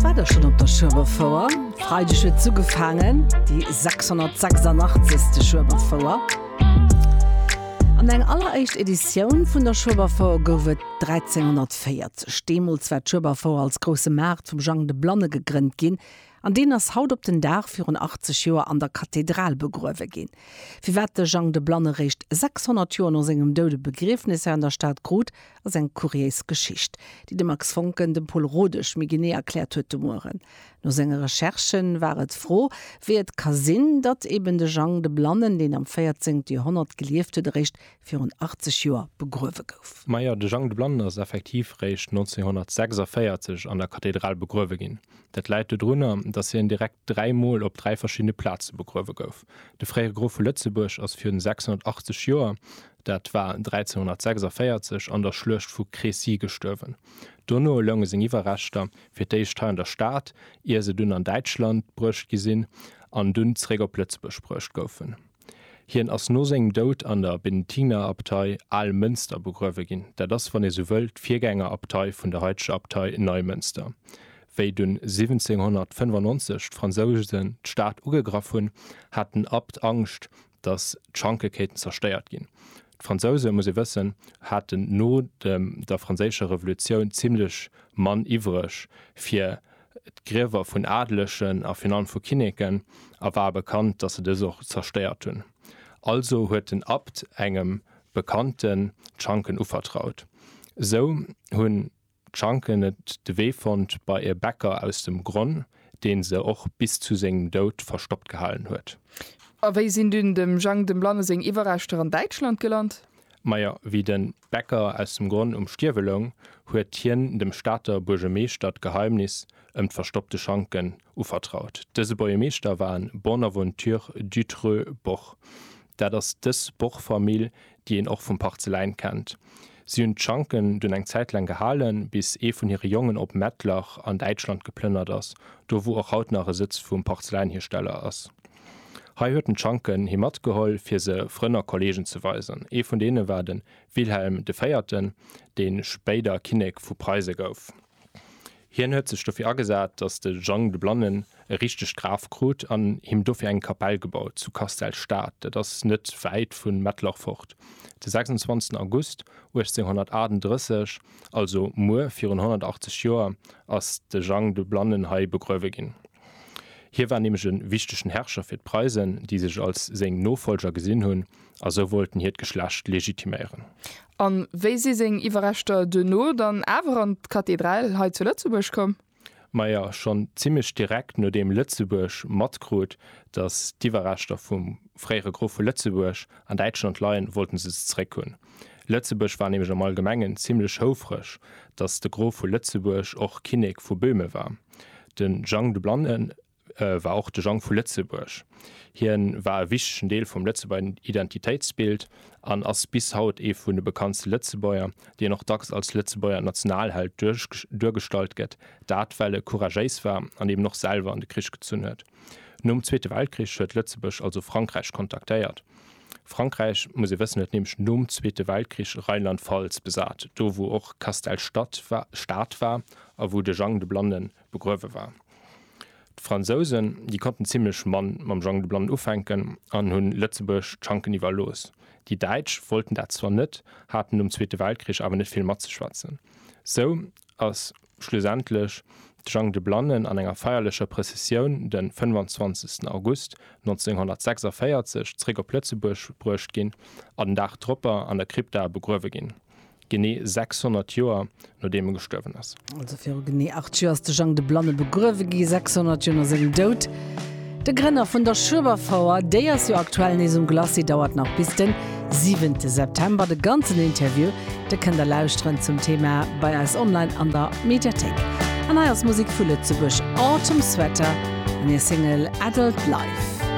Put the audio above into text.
War der schonn op der Schueberfouer? Freideg huet se ugefaangen, déi 686. Schueberfouer. An eng alleréischt Editioun vun der Schueberfouer gouf et 1340. Deemools war d'Schueberfouer als grousse Maart vum Jang de Blanne gegrënnt ginn an deen ass haut op den Dag virun 80 Joer an der Kathedral begruewe ginn. Firwat de Jang de Blanne réischt 600 Joer no sengem Doud e Begriefnes hei an der Stad krut, Ass eng kuriéis Geschicht, déi de Max Voncken dem Pol Rodesch méi genee erkläert huet de Mueren. No senge Recherchen war et d'Fro, wéi et ka sinn, datt eben de Jang de Blannen, deen am 14. Joerhonnert gelieft huet, eréischt virun 80 Joer begruewe gouf. Majo, de Jang de Blannen ass effektiv eréischt 1946 an der Kathedral begruewe ginn. Dat läit dodrunner, datt hien direkt dräi Mol op dräi verschiddene Plaze begruewe gouf. De fréiere Grof vu Lëtzebuerg ass virun 680 Joer Dat war 1346 an der Schluecht vu Crécy gestuerwen. Dono lounge seng Iwwerreschter fir d'éischt hei an der Stad, ier se dunn an Däitschland bruecht gi sinn an dunn zeréck op Lëtzebuerg bruecht goufen. Hien ass no sengem Doud an der Benediktinerabtei Almënster begruewe ginn, dat ass, wann ee sou wëll, d'Virgängerabtei vun der haiteger Abtei Neimënster. Wéi dunn 1795 d'Fransouse d'Stad ugegraff hunn, hat den Abt Angscht, datt d'Schanke kéinten zerstéiert ginn. D'Fransouse, muss ee wëssen, haten no der Franséischer Revolutioun zimlech Mann iwwreg fir d'Griewer vun Adelegen a virun allem vu Kinneken a war bekannt, datt se dës och zerstéiert hunn. Also huet den Abt engem Bekannten d'Schanken uvertraut. Esou hunn D'Schanken et de Wee fonnt bei e Bäcker aus dem Gronn, deen se och bis zu sengem Doud verstoppt gehalen huet. A wéi sinn dunn dem Jang dem Blanne seng Iwwerreschter an Däitschland gelant? Majo, wéi de Bäcker aus dem Gronn um Stierwe loung, huet hien dem Stater Buergemeeschter d'Geheimnis ëm d'verstoppte Schanken uvertraut. Dëse Buergemeeschter war en Bonaventure Dutreux Boch. Dat ass dës Boch-Famill, déi een och vum Parzeläin kennt. Si hunn d'Schanken dunn eng Zäit laang gehalen, bis ee vun hire Jongen op Mettlach an Däitschland geplënnert ass, do wou och haut nach e Sëtz vum Parzeläinhiersteller ass. Hei huet en d'Schanken hi matgeholl, fir se Frënn a Kolleegen ze weisen. Ee vun deene war de Wilhelm de Véierten, dee spéider Kinnek vu Preise gouf. Hien huet sech dofir agesat, datt de Jang de Blannen e richtegt Graf krut an him dofir eng Kapell gebaut zu Kastel-Stad, dat ass net wäit vu Mettlach fort. De 26 August 1838, also muer virun 180 Joer, ass de Jang de Blannen hei begruewe ginn. Hie war nämlech e wichtegen Herrscher fir d'Preisen, déi sech als seng Nofollger gesinn hunn, a sou wollten hiert Geschlecht legitiméieren. A wéi si seng Iwwerreschter duerno dann awer an d'Kathedral hei zu Lëtzebuerg komm? Majo, schonn zimmlech direkt nodeem Lëtzebuerg matkrut, datt d'Iwwerreschter vum fréiere Grof vu Lëtzebuerg an Däitschland leien, wollte se se zeréck hunn. Lëtzebuerg war nämlech am Allgemengen zimmlech houfreg, datt de Grof vu Lëtzebuerg och Kinnek vu Böhmen war. De Jang de Blannen war och de Jang vu Lëtzebuerg. Hien war e wichtegen Deel vum Lëtzebuerger Identitéitsbild an ass bis haut ee vun de bekanntste Lëtzebuerger, deen och dacks als Lëtzebuerger Nationalheld duergestallt gëtt, dat well e couragéis war an eben och selwer an de Krich gezunn huet. Nom Zweete Weltkrich huet Lëtzebuerg also Frankräich kontaktéiert. Frankräich, muss ee wëssen, huet nämlech nom Zweete Weltkrich Rheinland-Pfalz besat, do wou och Castell Stad war a wou de Jang de Blannen begruewe war. D'Fransousen, déi konnten zimlech mann mam Jang de Blannen ufänken an hunn Lëtzebuerg d'Schanken iwwerlooss. Déi Däitsch wollten dat zwar net, haten nom Zweete Weltkrich awer net vill matzeschwätzen. Sou ass schlussendlech de Jang de Blannen an enger feierlecher Prëssessioun de 25 August 1946 zréck op Lëtzebuerg bruecht ginn a den Dag dropper an der Krypta begruewe ginn. Genee 600 Joer nodeem e gestuerwen ass. Also viru genee 8 Joer ass de Jang de Blanne begruewe gi, 600 Joer no sengem Doud. De Grënner vun der Schueberfouer, déi ass jo aktuell nees um Glacis, dauert nach bis den 7 September. De ganzen Interview, de kënnt der lauschteren zum Thema bei eis online an der Mediathéik. An hei ass Musek vu Lëtzebuerg, Autumn Sweater an hir Single Adult Life.